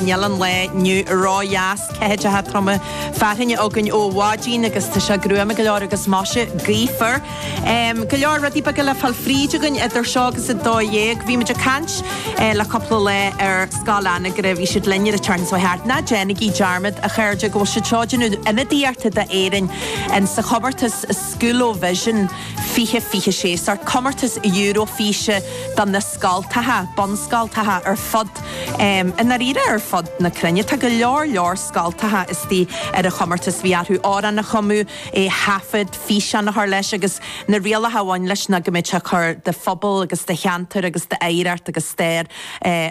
Níl an lá inniu ródheas, ceathaideacha troma fearthainne againn ó mhaidin agus tá sé gruama go leor agus measartha gaofar. Go leor rudaí beaga le fáil fríd againn idir seo agus a dó dhéag. Bhí muid ag caint le cúpla lá ar Scoil Anagaire, bhí siad linn an tseachtain seo chuaigh thart. Ná déanaigí dearmad, a chairde, go bhfuil siad seo ag déanamh ionadaíochta d'Éirinn in sa chomórtas Schoolovision 2026, sórt comórtas Eurofíse do na scoltacha, bunscoltacha ar fud. I ndáiríre ar fud na cruinne tá go leor leor scoltacha istigh ar an chomórtas. Bhí orthu amhrán a chumadh, é a thaifead, físeán a chur leis agus na rialacha a bhain leis ná go mbeadh tú ag cur do phobal agus do cheantar agus d'oidhreacht agus stair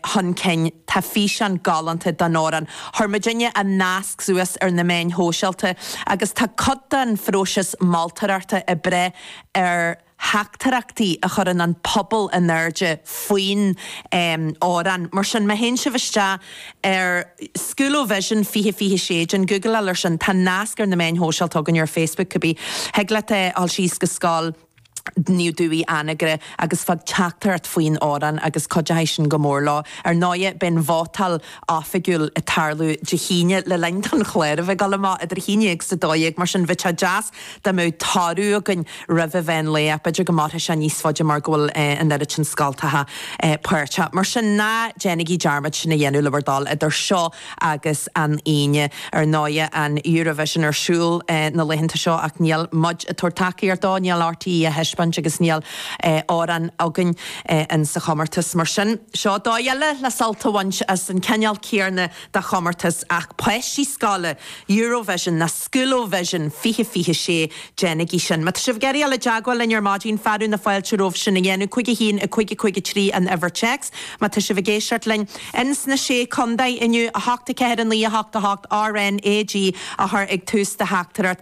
chun cinn. Tá físeán galánta den amhrán Hormozhenie tá nasc suas ar na meáin shóisialta agus tá cuid den phróiseas moltóireachta ag brath ar theachtaireachtaí a chuireann an pobal in airde faoin amhrán. Mar sin, má théann sibh isteach ar Schoolovision 2026, déan googleáil ar sin, tá nasc ar na meáin shóisialta againn, ar Facebook cibé, thig leat a ghabháil síos go Scoil Naomh Dúigh, Anagaire agus fág teachtaireacht faoin amhrán agus cuideoidh sin go mór leo. Ar ndóighe, beidh an vótáil oifigiúil ag tarlú Dé hAoine le linn don chlár a bheith ag gabháil amach idir 11 agus 12, mar sin bheadh sé deas dá mbeadh toradh againn roimh an mheán lae ach b'fhéidir go mairfidh sé níos faide mar go bhfuil an oiread sin scoltacha páirteach. Mar sin ná déanaigí dearmad sin a dhéanamh le bhur dtoil idir seo agus an Aoine. Ar ndóigh an Eurovision ar siúl na laethanta seo ach níl muid ag tabhairt tacaíocht dó, níl RTÉ á thaispeáint agus níl amhrán againn. in sa chomórtas. Mar sin, seo dóigh eile le sult a bhaint as an cineál céanna de chomórtas ach páistí scoile, Eurovision nó Schoolovision 2026. Déanaigí sin. Má tá sibh ag iarraidh a ghabháil i dteagmháil linn ar maidin, fearadh na fáilte romhaibh sin a dhéanamh, 51553 an uimhir téacs. Má tá sibh ag éisteacht linn in sna Sé Chontae inniu, 8 4 9 8 8 RNAG á chur ag tús do theachtaireacht.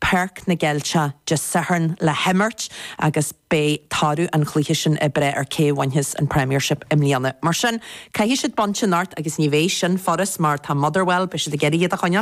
Páirc na gCeilteach Dé Sathairn le himirt agus beidh toradh an chluiche sin ag brath ar cé a bhainfeas an Premiership i mbliana. Mar sin, caithfidh siad baint anocht agus ní bheidh sin furast mar tá Motherwell, beidh siad ag iarraidh iad a choinneáil.